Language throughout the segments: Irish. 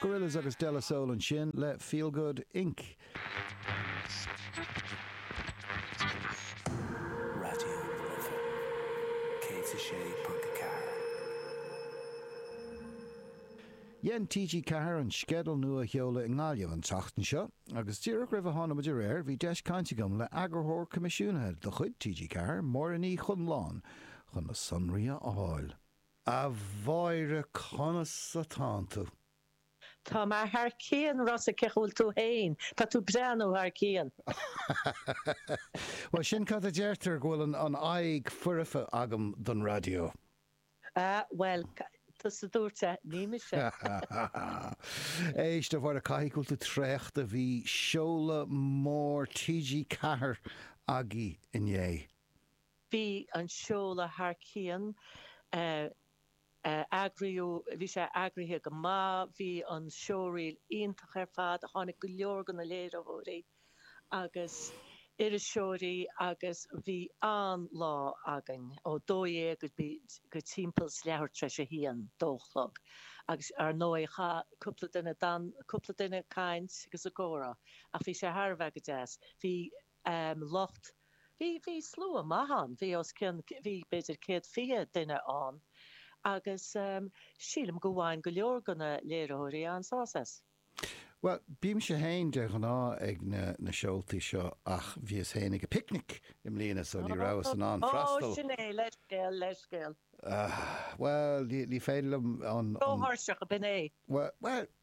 Gorillaz agus De La Soul ansin le Feel Good, Inc. Dhein TG4 an sceideal nua a sheoladh i nGaillimh an tseachtain seo agus díreach roimh a tháinig muid ar aer bhí deis caint agam le eagarthóir coimisiúnaithe de chuid TG4, Máire Ní Chonláin, chun na sonraí a fháil. A Mháire conas atánn tú? Tá mé thar cionn, Rossa, cén chaoi a bhfuil tú féin? Tá tú breá nó thar cionn? Bhuel, sin cad a deirtear, go bhfuil an aghaidh foirfe agam don raidió. A, bhuel, tusa a dúirt é, ní mise. Éist, a Mháire, caithfidh go bhfuil tú traochta, bhí seoladh mór TG4 agaibh inné. Bhí an seoladh thar cionn, bhí sé eagraithe go maith, bhí an showreel iontach ar fad, tháinig go leor de na léiritheoirí agus iriseoirí agus bhí an-lá againn, ó dó dhéag go timpeall leathuair tar éis a haon, dó a chlog, agus ar ndóigh chaith cúpla duine, rinne cúpla duine caint agus comhrá ach bhí sé thar a bheith go deas. Bhí. um lucht Bhí, bhí slua maith ann, bhí os cionn, bhí b'fhéidir céad fiche duine ann agus um sílim go bhain go leor de na léiritheoirí an-sásamh as. Bhuel, bímse féin de ghnáth ag na, na seoltaí seo ach bhíos féin ag an bPicnic i mbliana so ní rabhas in ann freastal. Ó, sin é, leithscéal, leithscéal. Bhuel, ní, ní féidir liom an, an. Ró-thuirseach, b'in é. Bhuel, bhuel,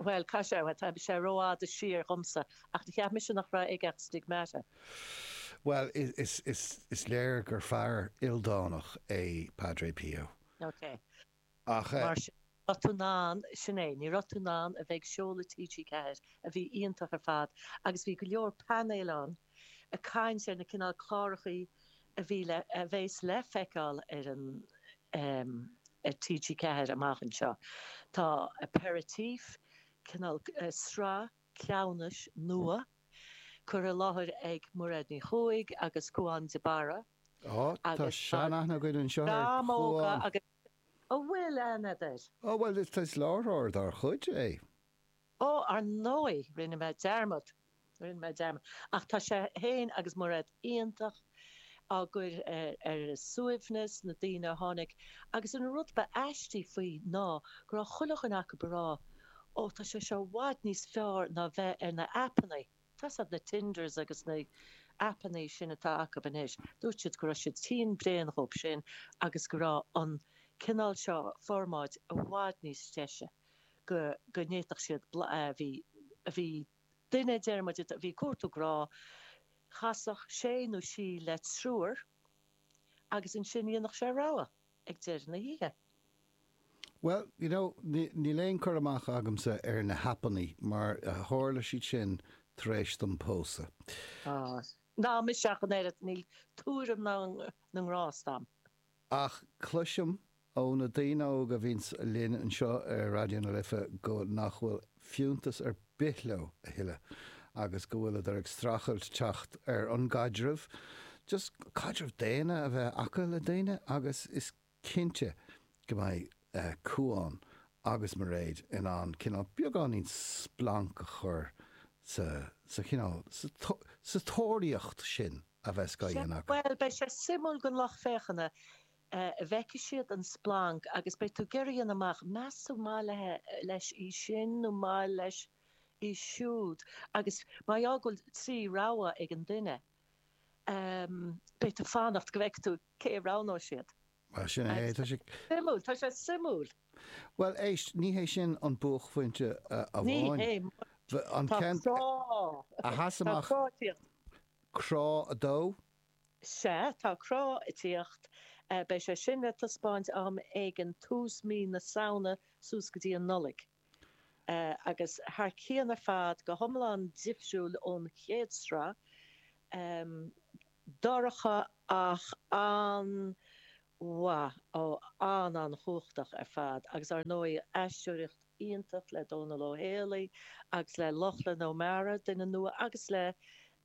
Bhuel, caith sé, tá sé rófhada siar dhomsa, ach cheap mise nach raibh aige ach stigmata. Bhuel, is léir gur fear ildánach é Padre Pio. Ok. Ach. Mar sin, ní raibh tú in ann, sin é, ní raibh tú in ann a bheith ag seoladh TG4, a bhí iontach ar fad, agus bhí go leor painéil ann ag caint ar na cineál clárachaí a a bhí a bheas le feiceáil ar an ar TG4 amach anseo. Tá Paisean Faisean, cineál sraith cleamhnais nua, curtha i láthair ag Mairéad Ní Chuaig agus Caomhán de Barra. Ó, tá seanaithne againn anseo ar Caomhán. Dream óga agus An bhfuil aithne agat air? Ó, bhuel, is láithreoir dár chuid é. Ó, ar ndóigh, rinne mé dearmad. Rinne mé dearmad, ach tá sé féin agus Mairéad iontach á gcur ar a suaimhneas, na daoine a tháinig, agus an rud ba aistí faoi ná go raibh chuile dhuine acu ag rá, 'Ó, tá sé seo i bhfad níos fearr ná bheith ar na h-aipeannaí'. Tá's a'd, na Tinders agus na h-aipeannaí sin atá acu anois, dúirt siad go raibh siad tinn bréan dhób sin agus go raibh an cineál seo formáid i bhfad níos deise go n'fhéadfadh siad, blah, bhí, bhí. Duine deirimid, a bhí ag cuartú grá, chasfadh sé nó sí le triúr agus ansin dhéanfadh sé rogha ag deireadh na hoíche. Bhuel, you know, níl aon cur amach agamsa ar na hAipeannaí mar tharla siad sin tar éis dom pósadh. Ná mise ach an oiread, níl tuairim na ngrást a'm. Ach cloisim ó na daoine óga a bhíonns linn anseo ar Raidió na Life go nach bhfuil fiúntas ar bith leo a thuilleadh agus go bhfuileadar ag streachailt teacht ar an gcaidreamh, just caidreamh daonna a bheith acu le daoine agus is cinnte go mbeidh Beidh Cuán agus Mairéad in ann cineál, beagáinín splanc a chur sa, sa chineál, sa, sa tóraíocht sin a bheas á dhéanamh acu. Bhuel, beidh sé suimiúil don lucht féachana, feicfidh siad an splanc agus beidh tú ag iarraidh a dhéanamh amach, meas tú maith le, leis í sin nó maith leis í siúd agus mar gheall go bhfuil trí rogha ag an duine, beidh tú ag fanacht go bhfeice tú cé a roghnóidh siad. Mar sin é, tá sé. Suimiúil, tá sé suimiúil. Bhuel, éist, ní hé sin an buaicphointe amháin. Ní hé. An ceann. Tá crá. A sheas amach. Tá Crá ag teacht. Crá 2. Sea, tá Crá ag teacht. Beidh sé sin le taispeáint am éigin tús mí na Samhna suas go dtí an Nollaig. agus thar cionn ar fad, go hiomlán difriúil ón chéad sraith, dorcha ach an-mhaith, á, an-an-chumhachtach ar fad agus, ar ndóigh, aisteoireacht iontach le Dónall Ó Héalaí agus le Lochlann Ó Mearáin, duine nua, agus le,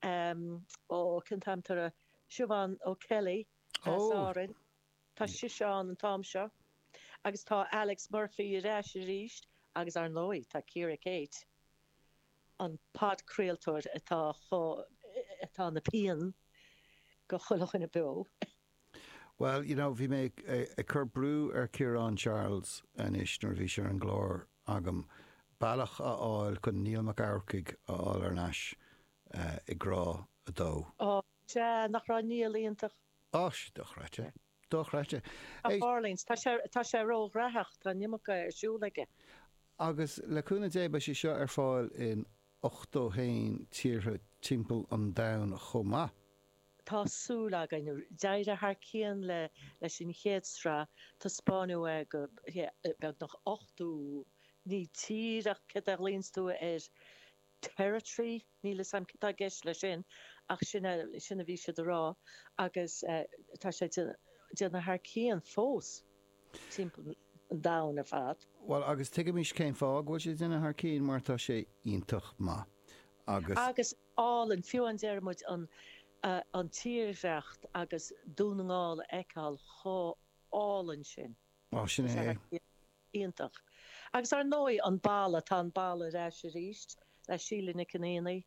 ó, cén t-ainm, Siobhán O'Kelly as Árainn. Tá sise ann an t-am seo agus tá Alex Murphy ar ais arís agus, ar ndóigh, tá Ciara-Kate, an podchraoltóir atá chomh, atá ina pian go chuile dhuine beo. Bhuel, you know, bhí mé ag cur brú ar Chiarán Charles anois nuair a bhí sé ar an gclár agam, bealach a fháil chun Niall Mac Eachmharcaigh a fháil ar ais i gCrá 2. Ó, sea, nach raibh Niall iontach? Áis dochreidte. Dochreidte. A É. Orleans. Tá sé, tá sé ró-ghraitheach. Tá an iomarca ar siúl aige. Agus le cúnamh Dé beidh sé seo ar fáil in 81 tíortha timpeall an domhain chomh maith. Tá súil againn. D'éirigh thar cionn le, leis an chéad sraith. Taispeáineadh é go, yeah, beagnach 80, ní tír ach, cad a ghlaonns tú air? territory. Níl fhios a'm cad tá i gceist le sin ach sin a, sin a bhí siad a rá agus tá sé ag déanamh thar cionn fós timpeall an domhain ar fad. Bhuel agus tuigimse cén fáth go bhfuil sé ag déanamh thar cionn mar tá sé iontach maith agus. Agus álainn, fiú amháin deir muid an, an tírdhreacht agus Dún na nGall a fheiceáil chomh álainn sin. Bhuel, sin é é. Iontach. Agus ar ndóigh, an balla, tá an balla ar ais arís le Síle Nic Chonaonaigh.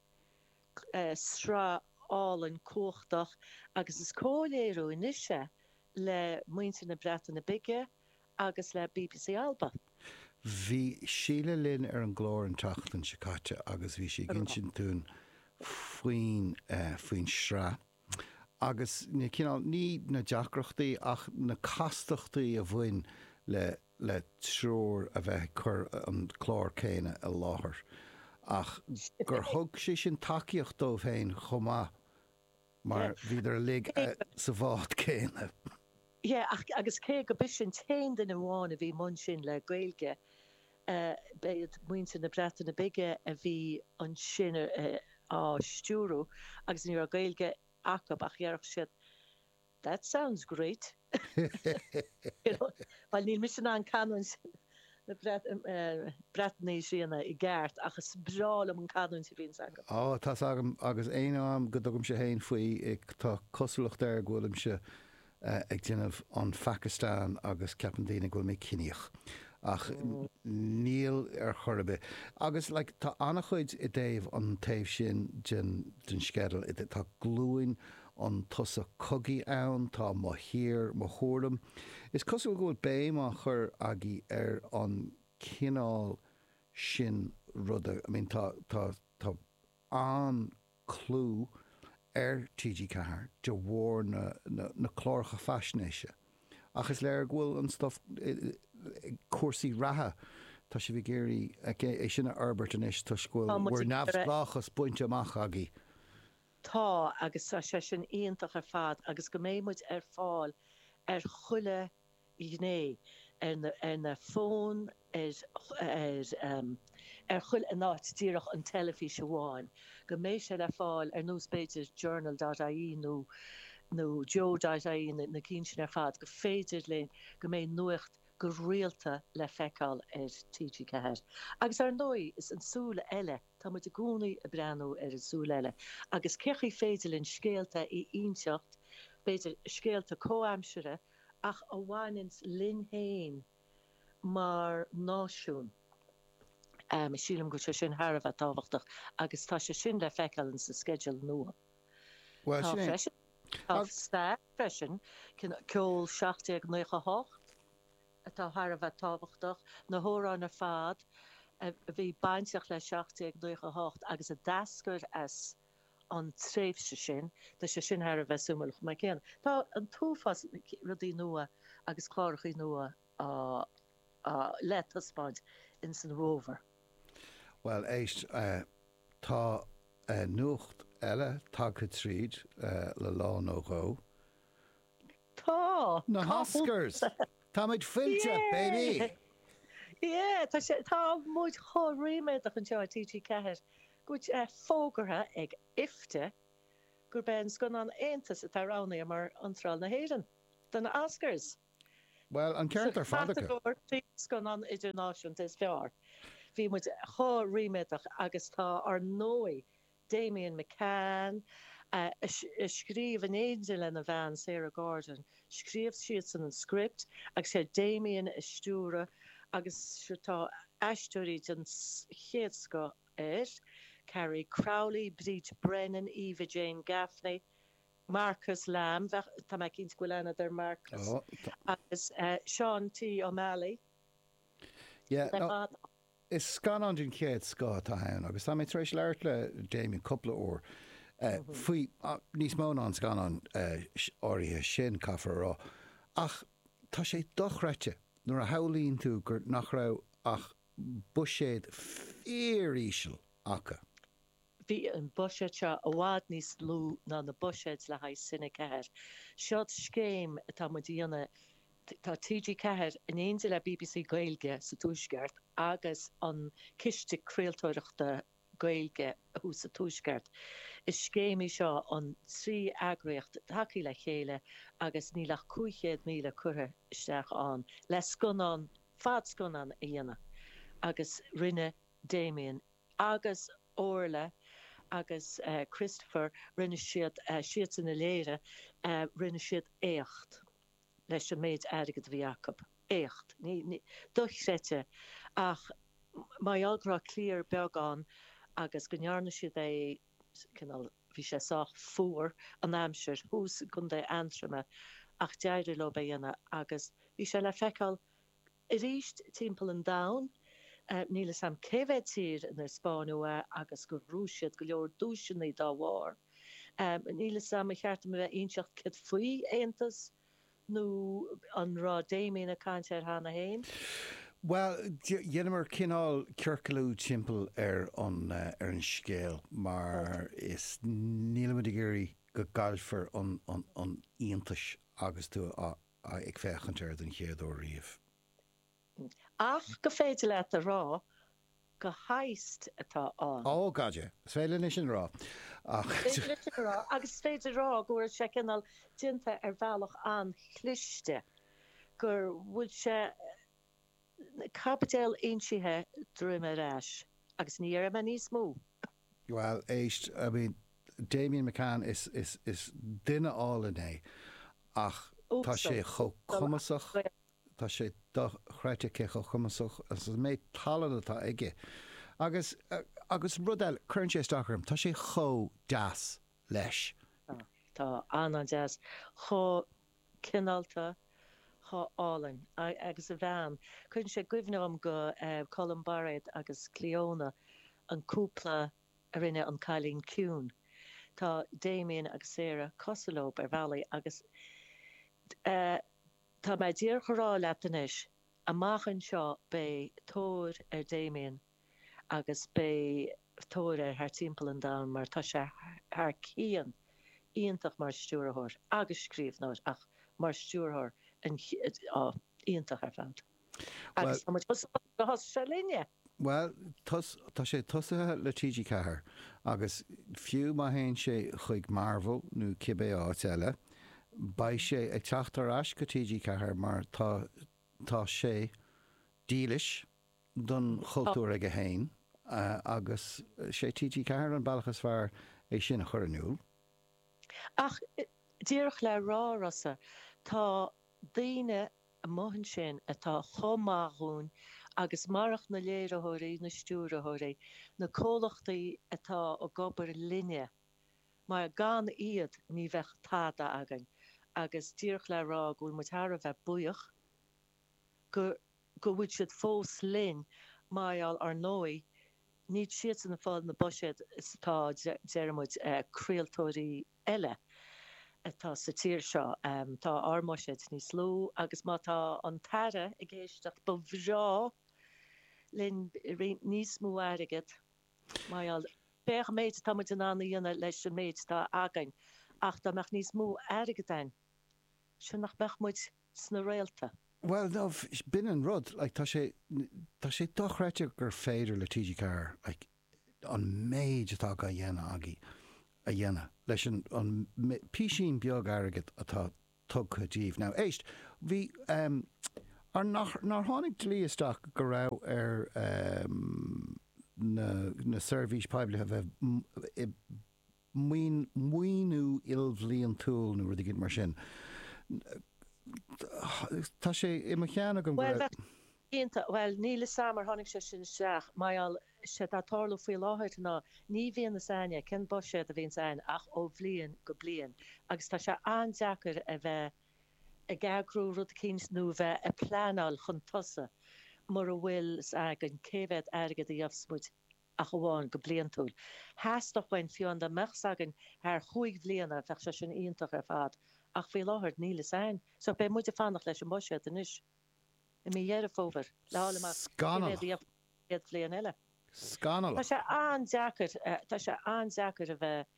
Sraith álainn, cumhachtach agus is comhléiriú anois é le muintir na Breataine Bige agus le bbc Alba. Bhí Síle linn ar an gclár an tseachtain seo caite agus bhí sí ag insint dúinn faoin sraith. agus na cineál, ní na deacrachtaí, ach na castachtaí a bhain le le triúr a bheith ag cur an clár céanna i láthair, ach gur thug sé sin tacaíocht dóibh féin chomh maith mar bhíodar uilig sa bhád céanna. Ach, agus cé go b'ise an t-aon duine amháin a bhí i mbun sin le Gaeilge, b'iad muintir na Breataine Bige a bhí ansin á stiúradh agus ní raibh Gaeilge acu ach déarfadh siad That sounds great! You know, bhuel níl mise in ann canúint na Breataine a dhéanamh i gceart ach is breá liom an canúint a bhíonns acu. Á, tá's agam agus aon am go dtugaimse féin faoi tá cosúlacht air go bhfuilimse ag déanamh an Phacastáin agus ceapann daoine go bhfuil mé ciníoch ach níl ar chor ar bith. Agus like tá an-chuid i dtaobh an taobh sin den den sceideal i tá Glúin an tSosa Cogaidh ann, tá mo thír, mo thuairim. Is cosúil go bhfuil béim á chur agaibh ar an cineál sin ruda, I mean tá tá tá an-chlú ar TG4 de bharr na cláracha faisnéise ach is léir go bhfuil an stuif cúrsaí reatha, tá sibh ag iarraidh é sin a fhorbairt anois toisc go bhfuil bhur neamhspleáchas bainte amach agaibh. Tá agus tá sé sin iontach ar fad agus go mbeidh muid ar fáil ar chuile ghné, ar na, ar na fóin, ar, ar, ar chuile, ní díreach an teilifís amháin, go mbeidh sé le fáil ar nós b'fhéidir journal dot ie nó, nó joe dot ie na, na cinn sin ar fad, go féidir linn, go mbeidh nuacht go rialta le feiceáil ar TG4. Agus ar ndóigh is an súil eile, tá muid i gcónaí ag breathnú ar an súil eile agus cén chaoi féidir linn scéalta a inseacht, b'fhéidir scéalta comhaimseartha, ach a bhaineanns linn féin mar náisiún, sílim go bhfuil sé sin thar a bheith tábhachtach agus tá sé sin le feiceáil ins an sceideal nua. Tá stair freisin, ceol 1798 atá thar a bheith tábhachtach, na hamhráin ar fad a bhí bainteach le 1798 agus a d'eascair as, an tréimhse sin. Tá sé sin thar a bheith suimiúil chomh maith céanna. Tá an t-uafás rudaí nua agus clárachaí nua le taispeáint ins an bhfómhar. Bhuel, éist, tá nuacht eile tagtha tríd le lá nó dhó. Tá! Na Cá bhfuil hOscars! tú? Táimid fillte, baby! Yeah! Yeah! Tá sé, tá muid chomh ríméadach anseo i TG4 go bhfuil sé fógartha ag IFTA gurb é an scannán Aontas atá roghnaithe mar iontráil na hÉireann do na Oscars! Bhuel, an Sa ceart ar fad acu! chatagóir Scannán Idirnáisiúnta is Fearr. Bhí muid chomh ríméadach agus tá ar ndóigh Damian McCann, a scríobh in éindí lena bhean Sarah Gordon. Scríobh siadsan an script agus sé Damian a stiúraigh agus tá aisteoirí den chéad scoth ann, Carrie Crowley, Bríd Brennan, Eva Jane Gaffney, Marcus Lamb, tá mé cinnte go bhfuil aithne ar Marcus, agus Sean T Ó Meallaigh. Is scannán den chéad scoth atá ann agus tá mé tar éis labhairt le Damian cúpla uair faoi, níos mó ná an scannán áirithe sin, caithfear a rá, ach tá sé dochreidte nuair a shamhlaíonn tú gur, nach raibh ach buiséad fíoríseal acu. Bhí an buiséad seo i bhfad níos lú ná na buiséid le haghaidh Cine 4. Seo scéim atá muid a dhéanamh. Atá TG4 in éindi le BBC Gaeilge sa Tuaisceart agus an Ciste Craoltóireachta Gaeilge thuas sa Tuaisceart. Is scéim í seo na trí eagraíocht ag tacú le chéile agus níl ach 500,000 curtha isteach ann le scannán, fadscannán a dhéanamh agus rinne Damian agus Orla agus Christopher, rinne siad, siadsan a léirigh, rinne siad éacht. leis an méid airgid a bhí acu. Éacht dochreidte ach mar gheall go raibh criú beag ann agus go ndearna siad é cineál, bhí sé sách fuar an aimsir thuas i gContae Aontroma ach d'éirigh leo é a dhéanamh agus bhí sé le feiceáil Arís timpeall an domhain, níl fhios a'm cé mhéad tír inar spáineadh é agus gur bhuaigh siad go leor duaiseanna dá bharr. Níl fhios a'm an ceart dom a bheith ag inseacht céard faoi Aontas nó an raibh Damien ag caint air cheana féin? Bhuel, dheineamar cineál ciorclú timpeall ar an scéal mar is nílimid ag iarraidh go gcaillfear an t-iontas agus tú a ag féachaint air den chéad uair riamh. Ach is féidir leat a rá gur heist atá ann. Oh god yeah. Is féidir linn sin a rá ach. Is féidir linn sin a rá agus is féidir a rá go bhfuil sé cineál déanta ar bhealach an-chliste, go bhfuil sé. Caibidil insithe droim ar ais. Agus ní dhéarfaidh mé níos mó. Bhuel, éist, I mean, Damian McCann, is, is, is duine álainn é, ach tá sé Uasal. chomh Uasal cumasach, tá sé dochreidte cé chomh cumasach, agus an méid tallann atá aige. Agus, agus rud eile, cuireann sé isteach orm, tá sé chomh deas leis. Tá, tá an-an-deas. Chomh cineálta, chomh hálainn agus a bhean. Cuireann sé i gcuimhne dhom go, eh, Colm Bairéad agus Cleona, an cúpla a rinne An Cailín Ciúin. Tá Damien agus Sarah cosúil leob ar bhealaí agus, eh, tá mé ag iarraidh a rá leat anois, amach anseo beidh tóir ar Damien agus beidh tóir air thart timpeall an domhain mar tá sé thar cionn iontach mar stiúrthóir agus scríbhneoir ach mar stiúrthóir iontach ar fad agus tá muid chomh sásta gur thosaigh sé linne! Bhuel, tá sé tosaithe le TG Ceathair agus fiú má théann sé chuig Marvel nó cibé áit eile, beidh sé ag teacht ar ais go TG Ceathair mar tá sé dílis do don chultúr aige féin agus sé TG4 an bealach is fearr é sin a chur in iúl. Ach díreach le rá, Rossa, tá daoine amuigh ansin atá chomh maith dhúinn agus marach na léiritheoirí, na stiúrthóirí, na comhlachtaí atá ag obair linne, mar gan iad ní bheadh tada againn agus díreach le rá go bhfuil muid thar a bheith buíoch gur. go bhfuil siad fós linn, mar gheall ar ndóigh, níl muide ag fáil na buiséid atá, deir muid, craoltóirí eile atá sa tír seo, tá ár mbuiséad níos lú agus má tá an tAire ag éisteacht ba bhreá linn níos mó airgead, mar gheall, féach an méid atá muid in ann a dhéanamh leis an méid atá againn ach dá mbeadh níos mó airgead ann, 's ea nach mbeadh muid. sna réalta. Bhuel ó, b'in an rud, like, tá sé, tá sé dochreidte gur féidir le TG4, like, an méid atá á dhéanamh agaibh a dhéanamh leis an an písín beag airgid atá tugtha daoibh. Now, éist, bhí, ehm, ar nach, nár tháinig dlí isteach go raibh ar, ehm, na, na seirbhís poiblí a bheith i, maoiniú ilbhliantúil nó rud éigin mar sin, tá sé i mo cheann agam go raibh. Cinnte, bhuel, níl 'fhios a'm ar tháinig sé sin isteach mar gheall, séard atá ag tarlú faoi láthair ná ní bhíonn 'fhios a'inne cén buiséad a bhíonns a'inn ach ó bhliain go bliain agus tá sé an-deacair a bheith ag eagrú rud eicínt nó a bheith a' pleanáil chun tosaigh mura bhfuil 's againn cé mhéad airgead a gheobhas muid. ach amháin go bliantúil. Theastódh uainn fiú dá mbeadh 's againn thar chúig bhliana, bheadh sé sin iontach ar fad, ach faoi láthair níl fhios a'ainn. So beidh muid ag fanacht leis an mbuiséad anois i mí Dheireadh Fómhair le fháil amach cé mhéad a Scannalach. dhéanfar an chéad bhliain eile. Tá Scannalach. sé an-deacair, tá sé an-deacair a bheith.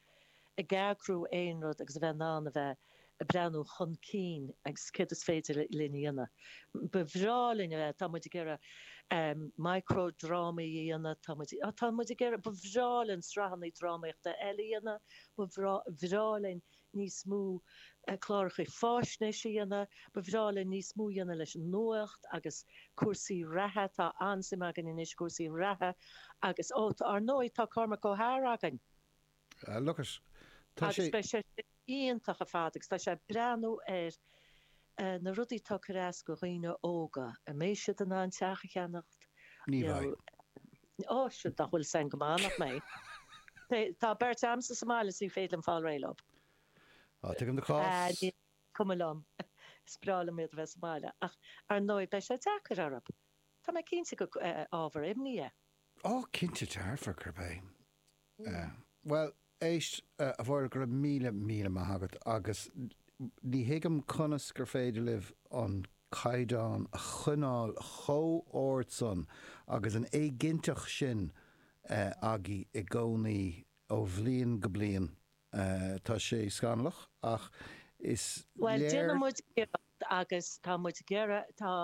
ag eagrú aon rud agus a bheith in ann a bheith ag breathnú chun cinn agus céard is féidir linn a dhéanamh. Ba bhreá linn a bheith, tá muid ag iarraidh micro-drámaí a dhéanamh, tá muid, tá muid ag iarraidh, ba bhreá linn sraitheanna drámaíochta eile a dhéanamh, ba bhreá, bhreá linn níos mó cláracha fáisnéis a dhéanamh, ba bhreá linn níos mó a dhéanamh leis an nuacht agus cúrsaí reatha, tá an-suim againn anois i gcúrsaí reatha agus, ó, ar ndóigh, tá Cormac Ó hEadhra againn. Agus tá sé. Agus beidh sé sin iontach ar fad agus tá sé ag breathnú ar na rudaí atá ag cur as go dhaoine óga. An mbeidh siad in ann teach a cheannacht? Ní bheidh. Ó, siúd nach bhfuil san go maith, nach mbeidh? Tá beirt a'msa sa mbaile 's ní féidir liom fáil réidh leo. Á, tuigim do chás. Is cuma liom, is breá liom iad a bheith sa mbaile ach ar ndóigh beidh sé deacair orthu. Tá mé cinnte gur ábhar imní é. Ó, cinnte, tabharfar, cuir béim. Bhuel, éist, a Mháire, go raibh míle, míle maith agat agus ní thuigim conas gur féidir libh an caighdeán a choinneáil chomh ard san agus an éiginnteacht sin agaibh i gcónaí ó bhliain go bliain. Tá sé scannalach ach is léir. Bhuel, déanann muid iarracht agus tá muid ag iarraidh, tá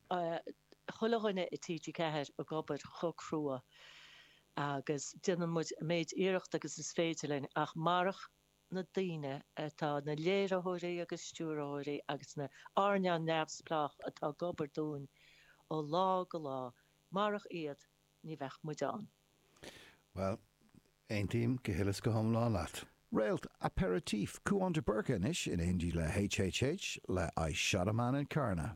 chuile dhuine i TG4 ag obair chomh crua agus déanann muid an méid iarrachta agus is féidir linn ach marach na daoine atá, na léiritheoirí agus stiúrthóirí agus na hearnála neamhspleách atá ag obair dúinn ó lá go lá, marach iad ní bheadh muid ann. Bhuel, aontaím go huile is go hiomlán leat. Réalt Aperitif, Cuan de Búrca anois in éindí le HHH le I Shot a Man in Carna.